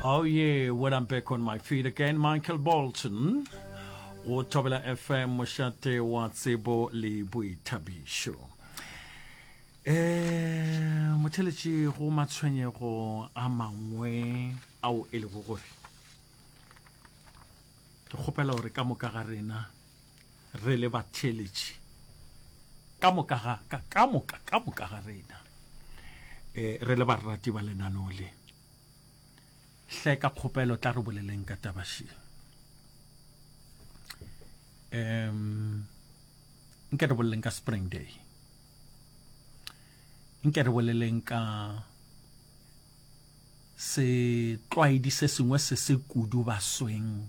Oh yeah, when I'm back on my feet again, Michael Bolton. Go thobela FM mošate wa tsebo le boithabišo. Eh, motheletši go matshwenyego a mangwe ao e lego gore ke kgopela gore ka moka ga rena Re le batheeletši ka moka ga ka ka moka ka moka ga rena eh, re le barati ba lenaneo le hle ka kgopelo tla re boleleng ka tabaši um nke re boleleng ka spring day nke re boleleng ka setlwaedi se sengwe se se kudu basweng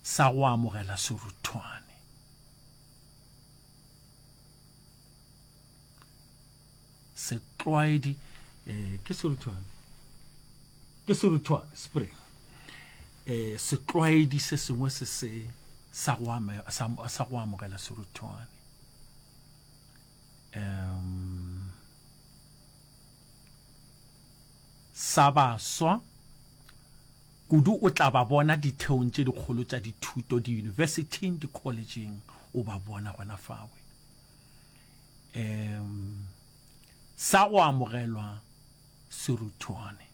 sa go amogela seruthwane. Setlwaedi eh, ke seruthwane ke seruthwane spring eh, setlwaedi se sengwe se se sa go amogela seruthwane um sa baswa Kudu o tla ba bona ditheong tše dikgolo tša dithuto, diyunibesithing, dikholetšheng, o ba bona gona fawe. Um, sa go amogelwa serutwane.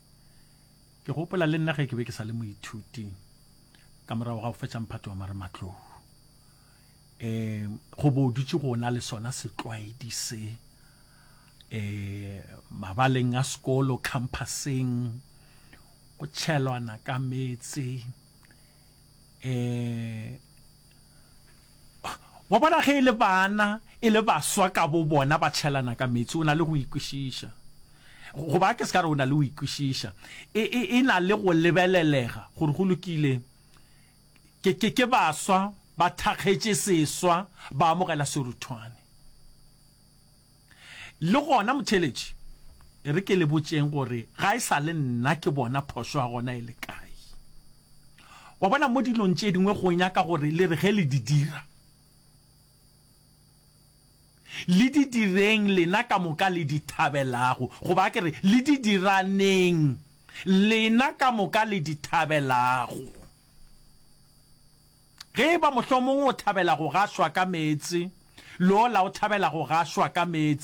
Ke gopola le nna ge ke be ke sa le moithuti, ka morago ga go fetša mphato wa marematlou, um, go bo dutše go na le sona setlwaedi se, um, mabaleng a sekolo, campuseng, Go tšhelwana ka meetse. Eh. Wa bona ge e le bana e le baswa ka bo bona ba tšhelana ka meetse o na le go ikwešiša go ba ke se ka re o na le go ikwešiša e, e, e na le go lebelelega gore go lokile ke, ke, ke baswa ba thakgetše seswa ba amogela seruthwane Le gona motheeletši, e re ke le botšeng gore ga e sa le nna ke bona phošo ya gona e le kae. Wa bona, mo dilong tše dingwe go nyaka gore le re ge le di dira, le di direng lena ka moka le di thabelago, goba a ke re, le di diraneng lena ka moka le di thabelago. Ge e ba mohlomong o thabela go gašwa ka meetse, lo la o thabela go gašwa ka meetse.